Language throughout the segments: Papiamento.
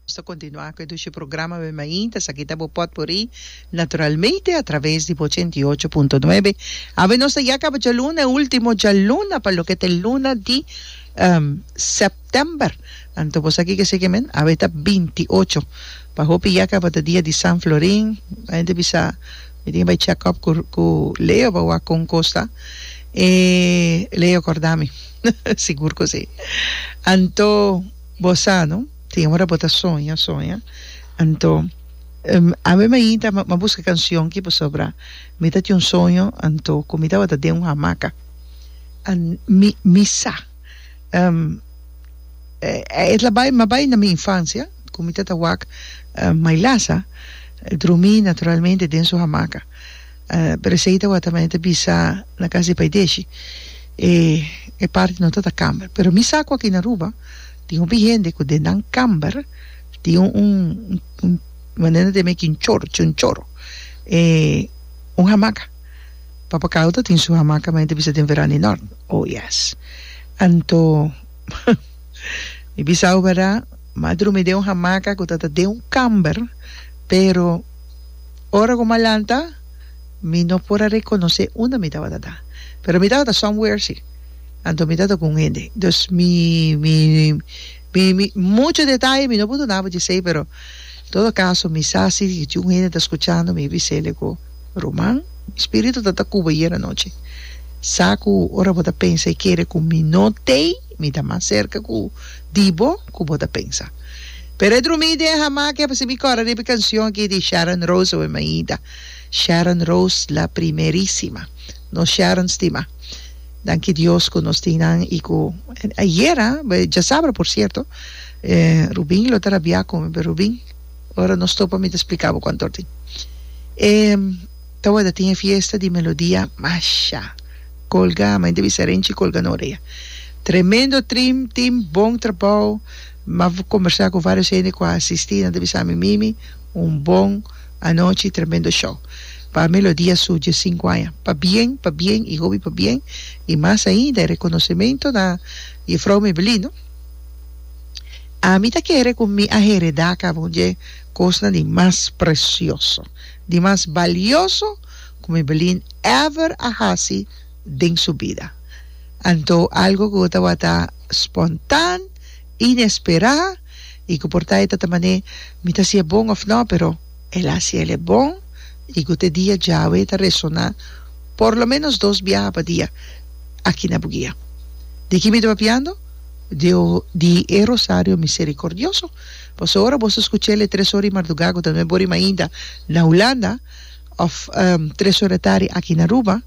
Nos ta kontinuá ku e dushi programa Wen Mainta. Esaki ta bo pòtpurrí naturalmente atraves di bo ochenta i ocho punto nuebe. Awe nos ta ya kaba djaluna, e último djaluna pa loke ta e luna di sèptèmber. Anto bo saki ke seke men? Awe ta binti ocho. Pa hopi ya kaba ta dia di San Florin. Bai hende bisa. Mi tin bai check up cu Leo pa wak con cos ta e Leo corda mi sigur cu si anto bo sa no tin ora bo ta soña soña anto ami mainta m'a busca cancion ki pasobra mi ta tin un soño anto cu mi tabata den un hamaca mi mi sa. E ta bai ma bai na mi infancia cu mi tata wak mai lasa drumi naturalmente den su hamaca pero esey tawatamente bisa na cas di paideshi e parti no ta ta camber pero mi sa cu aki na Aruba tin hopi hende cu den nan camber tin un manera nan ta me ki un choro un hamaca. Papakal ta tin su hamaca mei ta bisa den veran di nort. Oh yes. Anto mi bisao verda m'a drumi den un hamaca cu ta ta den un camber pero ora cu m'a lanta mi no por a reconoce unda mi tabata ta. Pero mi tabata somewhere si. Anto mi tabata cu un hende. Dus mi mi mi mi mucho detaye mi no por dunaba dje esey pero en todo caso mi sa si tin un hende ta scuchando mi bis'e cu Ruman, mi spiritu ta ta Cuba yera nochi. Sa cu ora bo ta pensa y kere cu mi no t'ey, mi ta mas cerca cu di bo cu bo ta pensa. Pero e drumi y den hamaca y apacin mi cora riba e cancion aki di Sharon Rose oe Maida. Sharon Rose la primerisima. Nos Sharon stima. Danki Dios cu nos tin nan y cu ayera, djasabra por cierto, Rubin lo ta rabia cu mi, pero Rubin. Ora nos topa mi ta splica bo con torti. E ta wada tin e fiesta di melodia masha colga ma inta bisa renchi colga no orea. Tremendo trim team bon trabao ma conbersa cu varios hende cu a asisti nan ta bisa mi mimi un bon anochi tremendo show pa melodia su dies cinco aña pa bien pa bien y hopi pa bien y mas ainda e reconocemento na jefrouw Mebelin no. Ami ta kere ku mi a heredá kaba un dje kosnan di mas presioso, di mas balioso ku mi Belin èver a hasi den su bida. Anto algu ku tabata spontan, inesperá i ku por ta e ta ta manera mi ta hasié bon òf nò, pero el a hasi el'e bon i ku te dia djawe ta resoná por lo ménos dos biaha pa dia aki na Buguia. Di ki mi ta papiando? di e Rosario Misericordioso. Paso ora boso scucha el e tres ora di mardugá, cu ta no e bor ima ainda na Hulanda, of tres ora tardi aki na Aruba,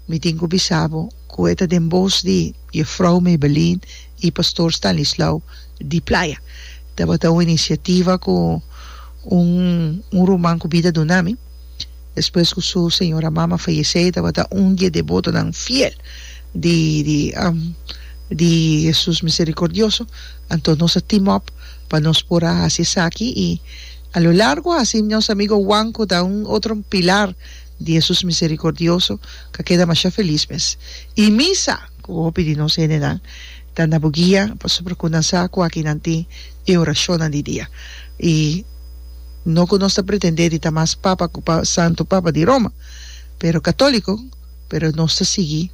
mi tin cu bisabo cu e ta den bos di Juffrouw Mebelien y Pastoor Stanislaw di Playa. Tabata un iniciativa cu un ruman cu bida duna mi. despues cu su señora mama fayece e tabata un di e devotonan fiel di di di Jesus Misericordioso, anto nos a team up pa nos por a haci esaki y a lo largo haci nos amigo Juan cu ta un otro pilar di Jesus Misericordioso ca keda masha feliz mes y misa. Ku hopi di nos hendenan ta na bo guia, pasobra ku nan sa ku aki nan tin e orashonnan di dia. I no ku nos ta pretendé di ta mas papa ku Santu Papa di Roma, pero katóliko, pero nos ta sigui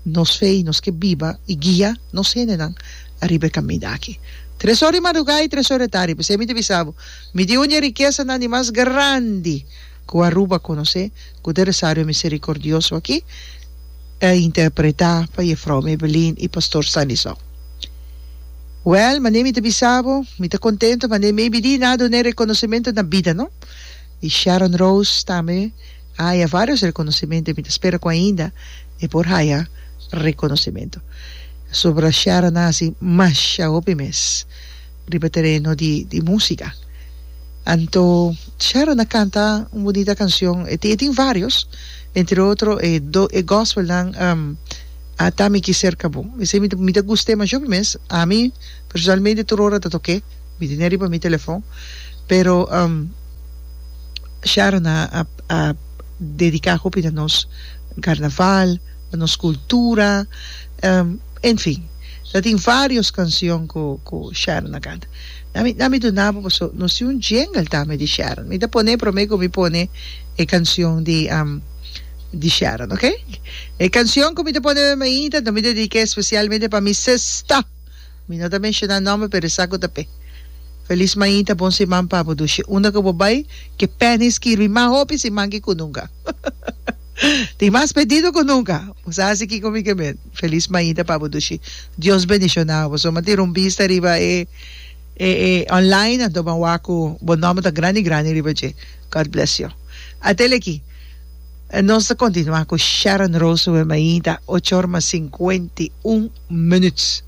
nos fe i nos ke biba i guia nos hendenan ariba e kaminda aki. Tres or di madrugá i tres or di tardi, p'esei mi ta bisa bo, mi tin un di e rikesanan di mas grandi. ku Aruba konosé ku de Resario Miserikordioso aki ta interpretá pa Jefrou Mebelin i Pastor Sanison. Wèl, manera mi ta bisa bo, mi ta kontentu manera maybe di na dun'é rekonosementu na bida no. I Sharon Rose tambe a haya vários rekonosementu i mi ta spera ku ainda e por haya rekonosementu. Pasobra Sharon a hasi masha hopi mes. Riba tereno di di musika. Anto Sharon a kanta un bunita kanshon, e tin e tin varios, entre otro e do e gospelnan um Ata mi ki serka bo. Esei mi ta mi ta gust'e masho mi mes, ami personalmente tur ora ta tok'e, mi tene riba mi telefon, pero um Sharon a a a dedica hopi na nos carnaval, na nos cultura. En fin, ta tin varios cancion cu cu Sharon a canta. Na mi na mi duna bo paso no si un jingle ta mi di Sharon. Mi ta pone prome cu mi pone e cancion di di Sharon, ok? E cancion cu mi ta pone meme ahi ta mi ta dedica especialmente pa mi sesta. Mi no ta menciona nomber pero e sa cu ta pe. Feliz mainta, bon siman pa bo dushi. Unda cu bo bay, ke Penny skirbi mas hopi siman ki cu nunca. Tin mas pedido cu nunca. Bo sa haci kico mi ke men. Feliz mañita pa bo Dushi. Dios bendiciona bo. Suma tin rumbista riba e e e online anto bo a wak cu bo nomber ta grandi grandi riba dje. God bless yo. A tele aki nos ta continua cu Sharon Roosevelt mañita ocho or mas cincuenta y un minuut.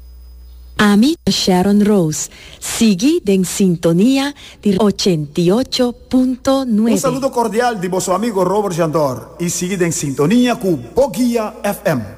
Ami ta Sharon Roos Sigui den sintonia di ochenta i ocho punto Un nuebe. saludo cordial di boso amigo Robert Jandor y sigui den sintonia cu Bo Guia FM.